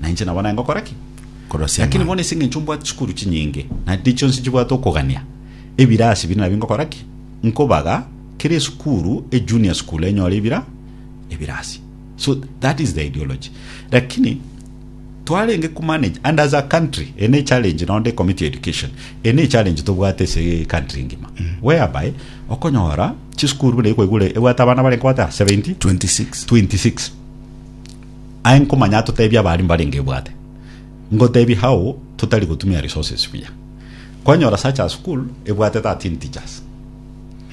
Na inche nabo nengokora ki? Korosia Lakini bono ase engencho mbwate chikuru chinyinge, na tindi chionsi chibwate okogania, ebira ase bire nabio nkogora ki? Nkobaga kera esukuru, e junior school enyore ebira ebira ase. So that is the ideology. Lakini twarenge ku manage and as a country ene e challenge no nde committee education ene e challenge tobwate ase country ngima whereby okonyora chisukuru buna ekoigure ebwate abana bare nkobata 70 26 26 Aye nkomanya atotebie abaaria mbarenge ebwate. Ngotebie how totari gotumia resources buya. Kwanyora such a school ebwate 13 teachers.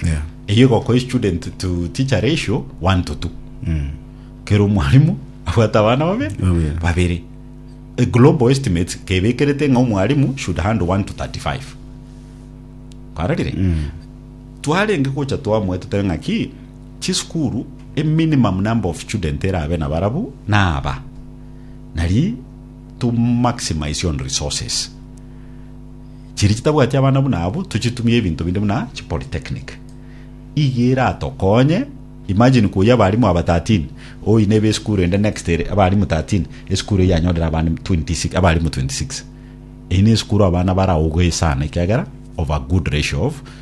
Yeah. Eyio egokoa student to teacher ratio 1 to 2. Mm. Kero omwarimu abwate abana babe Babere. babere. A global estimates kebekerete ng'a omwarimu should handle 1 to 35. Kwarorire? Mm. twarenge gocha twamoe totebe ng'aki Chisukuru, a minimum number of student erabe nabarabwo naaba, nari to maximize on resources. Chiria chitabwati abana buna abwo tochitumie ebinto binde buna chipolytechnic. Iga eratokonye, imagine koyia abarimu aba 13, oine ebe esukuru ende next ere abarimu 13, esukuru eyio yanyorire abana 26 abarimu 26. Eyio nesukuru abana baraogoe sana ekiagera of a good ratio of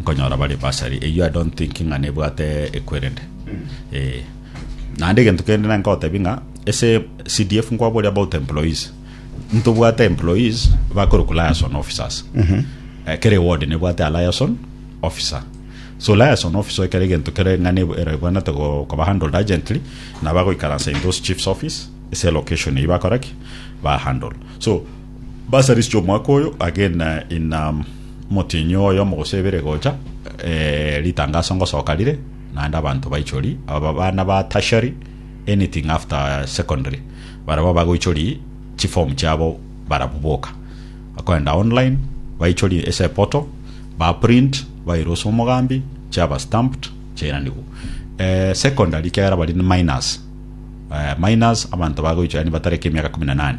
Nkonyora bare basari eyio I don't think ng'a nebwate ekwerende eh, naende egento kende nari nkogotebia ng'a ase CDF nkwabori about employees ntobwate employees bakorokwa liaison officers Eh, kere ward nebwate a liaison officer so liaison officer ekero egento kere ng'a nebo- ero ebwanete go- koba handled urgently nabagoikaransa in those chiefs office ase location eyio bakora ki ba handle so Basari chi'omwaka oyo agenda ina motienyi oye omogose ebere gocha, eh, ritangaso ngosoka rire, naende abanto baichori, aba bana ba tertiary, anything after secondary, barabwo bagoichori chiform chiabo barabwo boka. Bakoenda online, baichori ase portal, ba print, baira ase omogambi, chiaba stamped, chiairanigwa. Eh, secondary ekiagera bari ni minors, eh, minors, abanto bagoichora yaani batareti emiaka kumi na nane,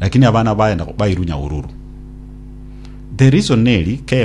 Lakini abana baye nabo bairunya ororo. The reason neri KM.